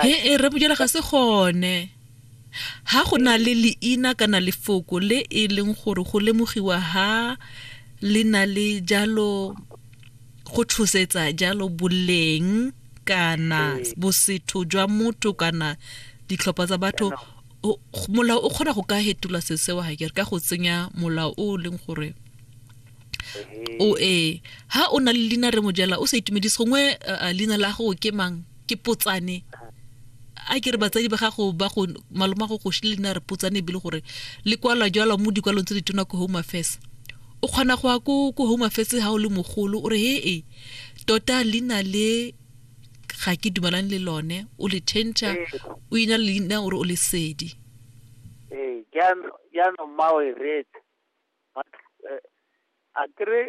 he e rebojela ga se gone ha go na le leina kana lefoko le e leng gore go lemogiwa ha le na le jalo go tshosetsa jalo boleng kana ee. bosetho jwa motho kana ditlhopha tsa batho molao o kgona go ka fetola se seo ga kere ka go tsenya molao o leng gore o e ha o na le leina re mojela o sa itumedise gongwe eh, eh, leina la gago ke mang ke potsane a ke re batsadi ba gago ba go maloma go go shile leina re potsane ebile gore le kwalwa jalo mo dikwalong tse di tona ko home affairs o kgona go ya ko ko home affairs ha o le mogolo o re he e tota leina le ga ke dumalane le lone o le change o ina leina o re o le sedi ee jaanong mma o e reetse a kere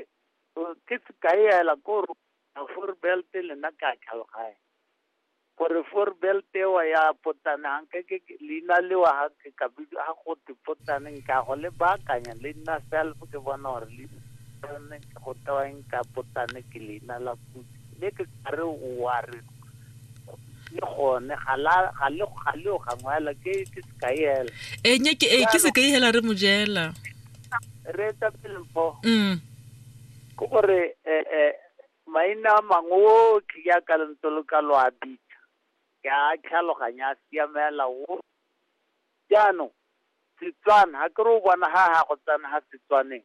ke sekai ela ko re a four belt le nna ke a tlhaloganya gore four belt ewa ya potsana nke ke ke- leina lewa ha ke ka bid- ha go te potsane nka go le baakanya le nna self ke bona gore le ke go tewang ka potsane ke leina la puso mme ke kare o a re le gone ga la- ga le ga le o gangwela ke ke sekai hela e nye ke e ke se ka ihela re mojela re etsa pele mpo mm ke gore eh, eh, maina a mangwe otlhe ya ka lentse lo ka lo a bitsa ke a tlhaloganya a siamela o jaanong setswana ga ke re o bona ga ga go tsena ga setswaneng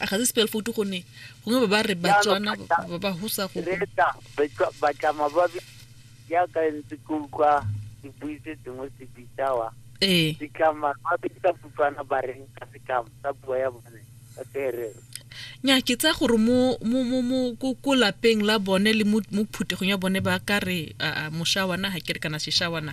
a ga se spell foto gone gongwe ba ba re batswana ba ba husa go reta batlama ba yaka ntse ke utlwa dipuise tse dingwe se bitsawa ee ditlama ba bitsa putlwana ba reng ka setlamo sa puo ya bone ka seherero nya ke tsa gore mo mo mo mo ko ko lapeng la bone le mo phuthegong ya bone ba ka re moshawana ha ke re kana seshawana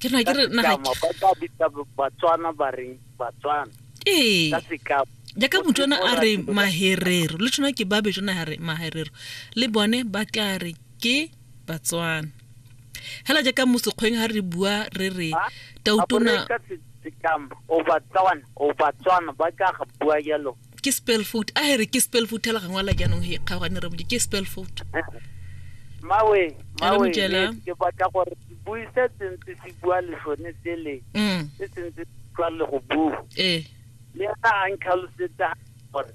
ke na ke re na ga ba ka bitsa batswana ba reng batswana ee ka sekao jaaka motswana a re maherero le tshwana ke ba betswana a re maherero le bone ba tla re ke batswana hela jaaka mosekgweng ha re bua re re tautona o batswana o batswana ba ka ga bua yalo ke spell foot a here ke spell foot la gangwe la jaanong he kgaogane re ke spell foot mawe mawe ke batla gore bui se sentse se bua lesone sele mm. se sentse tlwa le go bua ee le ena a ntlhalosetsa gore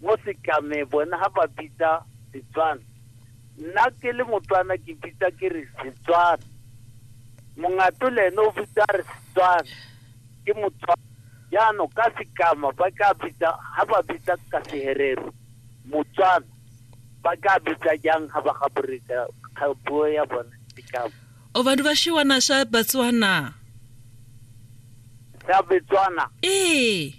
mo setlame bona ga ba bitsa setswana nna ke le motswana ke bitsa ke re setswana mongato le ene o bitsa re setswana ke motswako. Jaanong ka Sekama ba ka bitsa, ha ba bitsa ka Seherero, Motswana, ba ka bitsa jang ha ba gaboreka ka puo ya bone Sekama? O ba duba shiwana sha Batswana. Sa Betswana. Ee.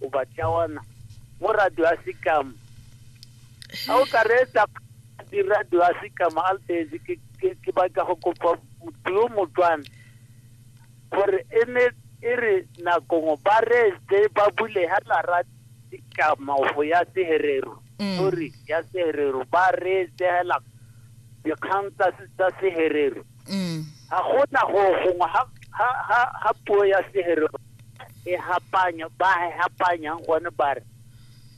o ba tšawana mo radio ya sekama ga o ka reetsa diradio ya sekama a letse ke batla go kopa motho yo motswana gore e ne e re nakongwe ba reetse ba bule ga lara sekama go ya seherero mm. sorry ya seherero ba reetse hela dikgang tsa seherero mm. ga gona go gongwe ga puo ya seherero e hapanya ba e hapanyang gone ba re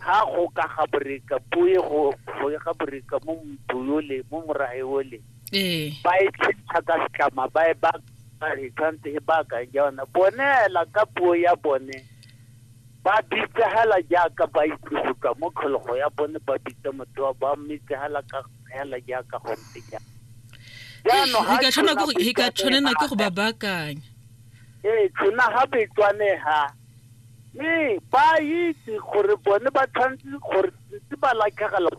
ha go ka ga boreka bo ye go go ye ga boreka mo motho yo le mo morae o le ee ba e tshitsha ka setlama ba e ba ba e tshwanetse e baakang jaana bone hela ka puo ya bone ba bitsa hela jaaka ba itse go tswa mo tlhologo ya bone ba bitsa motho wa ba mmitsa hela ka hela jaaka go ntse jaana jaanong ha e ka tshwanela ke go- e ka tshwanela ke go ba baakanya Ee, tshona ga betswane ha mme ba itse gore bone ba tshwanetse gore ntse ba latlhegela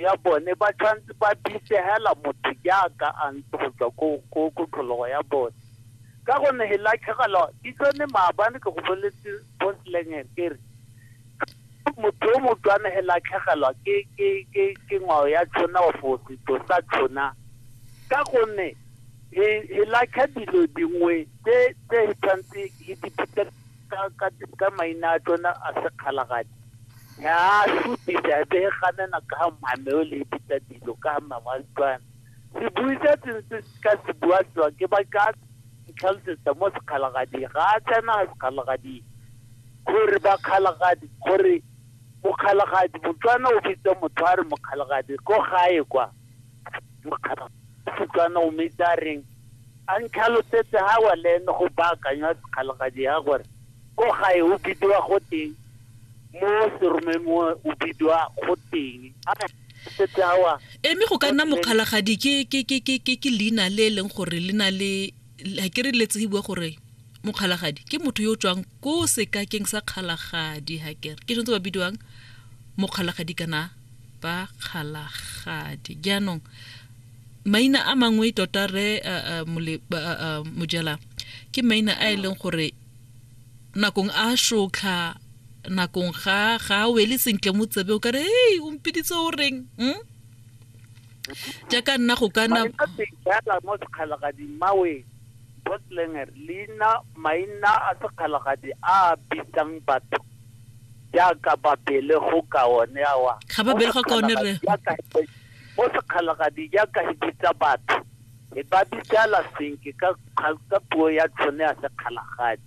ya bone ba tshwanetse ba bisegela motho jaaka a ntse go tswa ko ko tlhologo ya bone ka gonne he latlhegela di tsone maabane ke go boletse bontleng kere motho yo motswana he la tlhagelwa ke ke ke ke ngwao ya tshona o fo setso sa tshona ka gonne he he latlha dilo dingwe tse tse he tshwanetse he di phutha ka ka ka maina a tsona a sekgalagadi ya sutisa be he ganana ka mmame o le phutha dilo ka mmama wa setswana se buisa tsentse ka se bua tswa ke ba ka tlhalosetsa mo sekgalagadi ga a tsena sekgalagadi gore bakgalagadi gore mokgalagadi motswana o bitsa motho a re mokgalagadi ko gae kwa mokgalagadi o metsi a reng a ntlhalosetse ga wa le ene go baakanywa sekgalagadi ya gore ko gae o bidiwa go teng mo seromeng o bidiwa go teng setse awa eme go ka nna mokgalagadi ke leina le e leng gore le na le la ke re letse bua gore mokgalagadi ke motho yo o tswang ko sekakeng sa kgalagadi ha kere ke tshwanetse ba bidiwang mokgalagadi kana ba kgalagadi jaanong maina a mangwe tota re mojela ke maina a e leng gore nakong a shotlha nakong ga ga wele sentle mo tsebe o kare hey o mpiditse o reng mm? ja ka nna go kana jala mo sekgalagading mawe botlenger leina maina a sekgalagadi a bitsang batho jaaka babele go ka one awa ga babele go ka one re mo sekgalagadi jaaka e bitsa batho e ba bitsala senke ka puo ya tshone ya sekgalagadi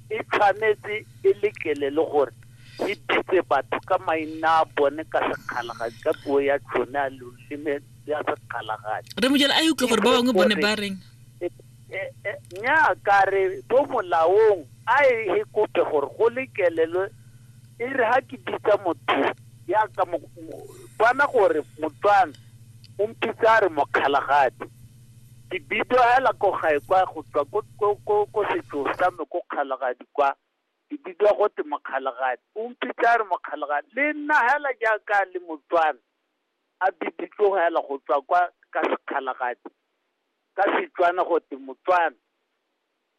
e tshwanetse e lekele le gore Di bitse batho ka maina a bone ka sekgalagadi ka puo ya tsone a loleme ya sekgalagadi re mojela a e utlwe gore ba bangwe bone ba reng E- e- e- nnyaa ka re bo molaong a e e kope gore go lekelelwe e re ga ke bitsa motho ya ka mo- mo- bona gore motswana o mpitsa a re mokgalagadi ke bidio hela ko gae kwa go tswa ko- ko- ko ko setso sa me ko kgalagadi kwa Ke bidiwa gote Mokgalagadi. O mpitse a re Mokgalagadi, le nna hela jaaka le Motswana, a biditswe hela go tswa kwa ka Sekgalagadi, ka Setswana gote Motswana.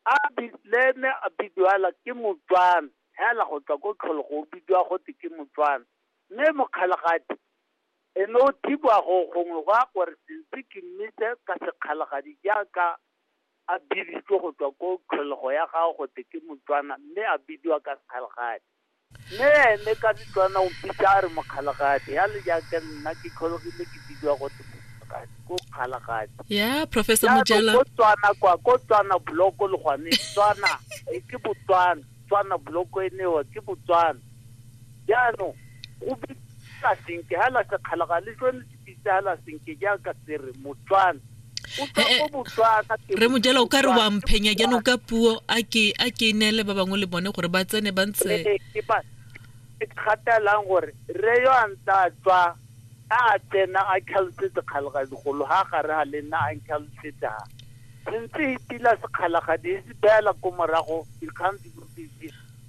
A bi, le ene a bidiwa hela ke Motswana, hela go tswa ko Tlholego o bidiwa gote ke Motswana. Mme Mokgalagadi, e ne o thibiwa go gongwe gwa gore Sense ke mmitse ka Sekgalagadi jaaka. a biditswe go tswa ko tlholego ya gago go te ke motswana mme a bidiwa ka sekgalagadi mme ene ka setswana o mpitsa a re mokgalagadi ya le jaaka nna ke tlhologile ke bidiwa go te mokgalagadi ko kgalagadi ya professor mojela ko tswana kwa ko tswana bloko le gone tswana e ke botswana tswana bloko e newa ke botswana jaanong go bitsa senke ga la sekgalagadi le tsone Ditsala senke jaaka tsere Motswana eh, eh, re mojela o ka re wa mphenya jaanong ka puo a ke a ke neele ba bangwe le bone gore ba tsene ba ntse eh, ke gatelang gore re yo a ntse a tswa a tsena a tlhalosetse kgalagadigolo ga gare ga le nna a ntlhalosetse ga sentse itila sekgalagadi e se beela ko morago dikgang di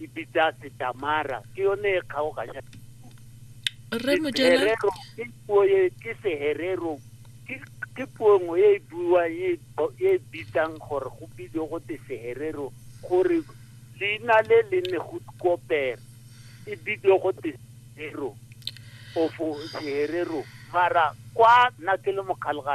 e bitsa setamara ke yone e kgaoganya rre mojela ke puo e ke seherero ke ke puo nngwe e buwang e, e bitsang gore go bile go te seherero gore leina le le ne go kopere e bile go te seherero ofo seherero mara kwa nna ke le mokgalga